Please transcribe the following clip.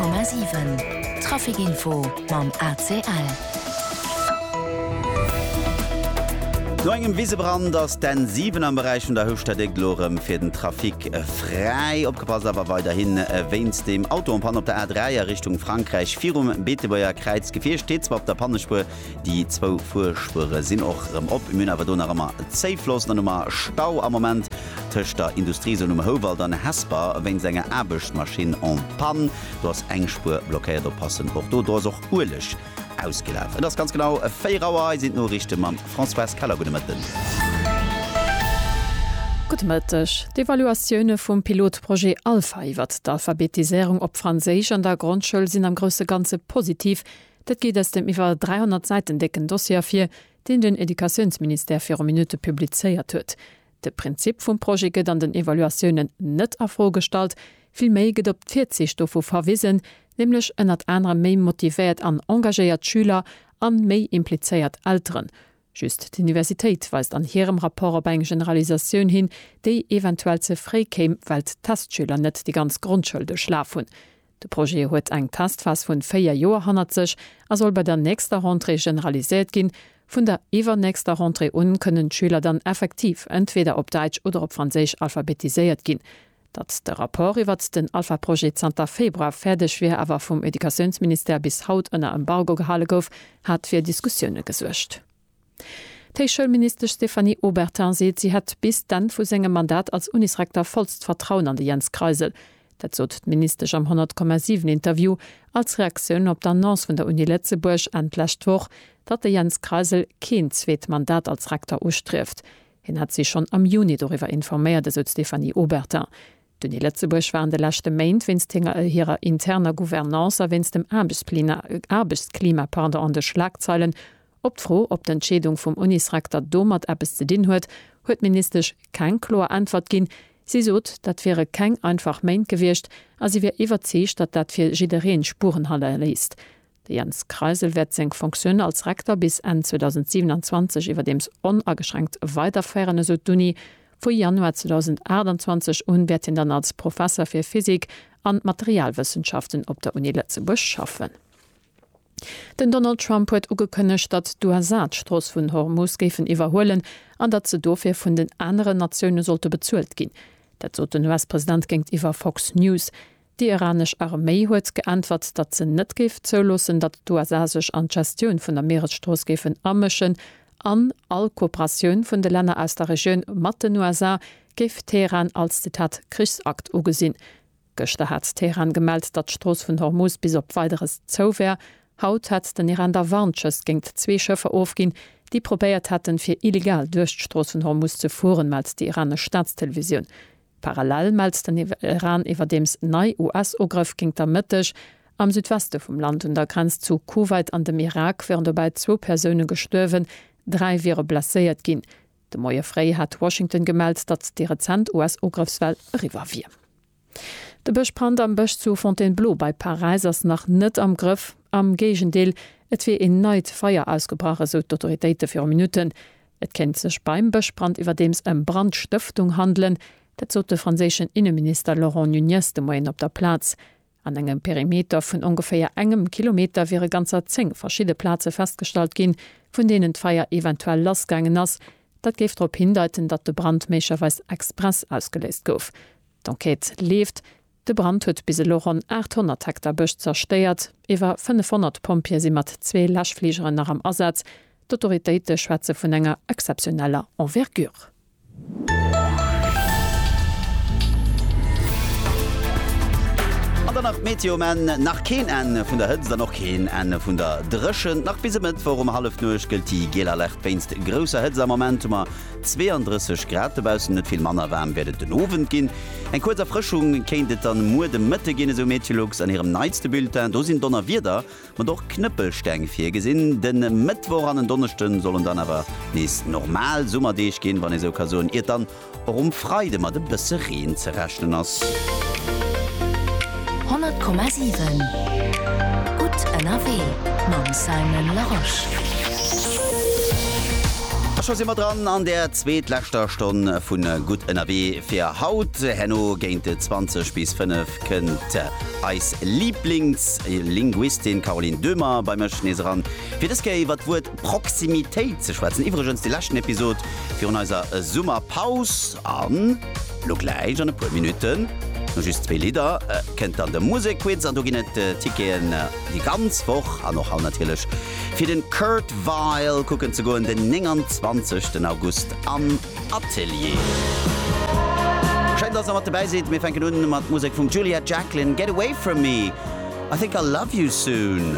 100,7 Trafic Info mam ACL. No engem Wisebrand ass d'N7 am Beräich vun der Houfstadt-Égd elo erëm fir den Trafic fräi. Opgepasst awer weiderhi wéinst dem Auto en panne op der A3 a Richtung Frankräich. Virum Beetebuerger Kräiz, d'Gefier steet zwar op der Pannespuer, Déi zwou Fuerspuere sinn och erëm op. Mir hunn awer do nach ëmmer Zéifloss. Dann hu mer Stau am Moment tëscht der Industriezon um Houwald an Hesper wéinst enger Aarbechtsmaschinn en panne. Do ass eng Spuer blockéiert. Oppassen och do. Do ass och Ueleg ausgelaf. Et ass ganz genau 4 Auer. Hei sinn d'Noriichte mam Françoise Keller. Gudde Mëtten. Gudde Mëtteg. D'Evaluatioune vum Pilotprojet Alpha iwwert d'Alphabetiséierung op Franséisch an der Grondschoul sinn am grousse Ganze positiv, Dat geet aus dem iwwer 300 Säiten décken Dossier ervir, deen den Educatiounsministère viru Minutte publizéiert huet. De Prinzip vum Projet gëtt an den Evaluatiounen net a Fro gestallt, villméi gëtt op d'Virziicht dovu verwisen, nämlech ënnert anerem méi motivéiert an engagéiert Schüler a méi implizéiert Elteren. Just d'Universitéit weist an hirem Rapport op eng Generalisatioun hin, déi eventuell ze fréi kéim, well d'Testschüler net déi ganz Grondschoul duerchlaf hunn. De Projet huet eng Testphas vun 4 Joer hannert sech a soll bei der nächster Rentrée generaliséiert ginn. Vun der iwwernächster Rentrée un kënnen d'Schüler dann effektiv entweder op Däitsch oder op Franséisch alphabetiséiert ginn. Datt de Rapport iwwert den Alpha-Projet zanter Februar fäerdeg wier, awer vum Educatiounsministère bis haut ënner Embargo gehale gouf, hat fir Diskussioune gesuergt. D'Héichschoulministesch Stéphanie Obertin seet, si hätt bis d'Enn vu sengem Mandat als Unisrektor vollst Vertrauen an de Jens Kreisel. Dat sot d'Ministesch am 100,7 Interview als Reaktioun op d'Annonce vun der Uni Lëtzebuerg Enn d'lescht Woch, datt de Jens Kreisel keen zweet Mandat als Rektor ustrieft. Hien hätt si schonn am Juni doriwwer informéiert, esou d'Stéphanie Obertin. D'Uni Lëtzebuerg war an de leschte Méint wéinst hirer interner Gouvernance a wéinst dem Aarbechtsklima an de Schlagzeilen. Op d'Fro, ob d'Entscheedung vum Unisrekter domat eppes ze dinn huet, huet d'Ministesch keng kloer Äntwert ginn. Si sot, dat wiere keng einfach Méint gewiescht a si wier iwwerzeegt, datt dat fir jidderee Spuren hannerléisst. De Jens Kreisel wäert seng Fonctioun als Rekter bis Enn 2027 iwwerdeems onageschränkt weiderféieren, esou d'Uni. Vu Januar 2028 un wäert hien dann als Professer fir Physik a Materialwëssenschaften op der Uni Lëtzebuerg schaffen. Den Donald Trump huet ugekënnegt, datt d'USA d'Strooss vun Hormus géifen iwwerhuelen an datt se dofir vun den aneren Natioune sollte bezuelt ginn. Dat sot den US-President géintiwwer Fox News. Déi iranesch Arméi huet geäntwert, datt se net géif zouloossen, datt d'USA sech an d'Gestioun vun der Mieresstrooss géifen amëschen an all Kooperatioun vun de Länner aus der Regioun mat den USA géif Teheran als, Zitat, Krichsakt ugesinn. Gëschter hat Teheran gemellt, datt d'Strooss vun Hormuz bis op Weideres zou wär. Haut hätt den Iran da Warnschëss géingt zwee Schëffer ofginn, déi probéiert hätten, fir illegal duerch d'Strooss vun Hormuz ze fueren, mellt déi iranesch Staatstelevisioun. Parallel mellt den Iran iwwerdeems nei US-Ugrëff géint der Mëtteg am Südweste vum Land un der Grenz zu Kuwait an dem Irak wieren dobäi zwou Persoune gestuerwen, dräi wiere blesséiert ginn. De Moie fréi hat Washington gemellt, datt déi rezent US-Ugrëffswell eriwwer wier. De Bëschbrand am Bësch zu Fontainebleau bei Paräis ass nach net am Grëff. Am Géigendeel, et wier een neit Feier ausgebrach, esou d'Autoritéite viru Minutten. Et kéint sech beim Bëschbrand iwwerdeems ëm Brandstëftung handelen. Dat sot de franséischen Inneminister Laurent Nunez de Moien op der Plaz. An engem Perimeter vun ongeféier engem Kilometer wiere ganzer zéng verschidde Plaze festgestallt ginn, vun deenen d'Feier eventuell lassgaangen ass. Dat géif drop hindeiten, datt de Brand méiglecherweis express ausgeléist gouf. D'Enquête leeft. De Brand huet bis elo ronn 800 Hektar Bësch zerstéiert. Iwwer 500 Pompjeeë si mat zwee Läschfligeren nach am Asaz. D'Autoritéite schwätze vun enger exzeptioneller Envergure. An dann nach d'Meteo um Enn, Nach keen Enn vun der Hëtzt an och keen Enn vun der Dréchent. Nach bis e Mëttwoch um Hallefnuecht gëllt déi giel Alerte wéinst grousser Hëtzt. Am Moment hu mer 32 Grad dobaussen, net vill manner waarm wäert et den Owend ginn. Eng kuerz Erfrëschung kéint et dann muer de Mëtte ginn, esou Meteolux an hirem neitste Bulletin. Do sinn Donnerwieder, mat och Knëppelsteng virgesinn. De Mëttwoch an en Donneschde sollen dann awer nees normal Summerdeeg ginn, wann ee sou ka soen, iert dann och um Freide mat e bësse Reen ze rechnen ass. 100,7 Gutt ënnerwee mam Simon Larosche. A scho si mer dran an der zweetleschter Stonn vu Gutt Ënnerwee fir haut. Herno géint 20 bis 5 kënnt eis Liiblingslinguistin Caroline Döhmer bei mech nees eran, fir dës Kéier iwwer d'Wuert Proximitéit ze schwätzen. Iwwregens déi leschten Episod virun eiser Summerpaus. An elo gläich an e puer Minutten, no just zwee Lidder, kënnt dann de Musekquiz an do ginn et Ticketen déi ganz Woch an och haut natierlech. Fir de Kurt Weill kucken ze goen, den 29 den August am Atelier. Schéin, dass der mat dobäi sidd. Mir fänken un mat Musek vum Juliet Jacklin, Get Away From Me, I Think I'll Love You Soon.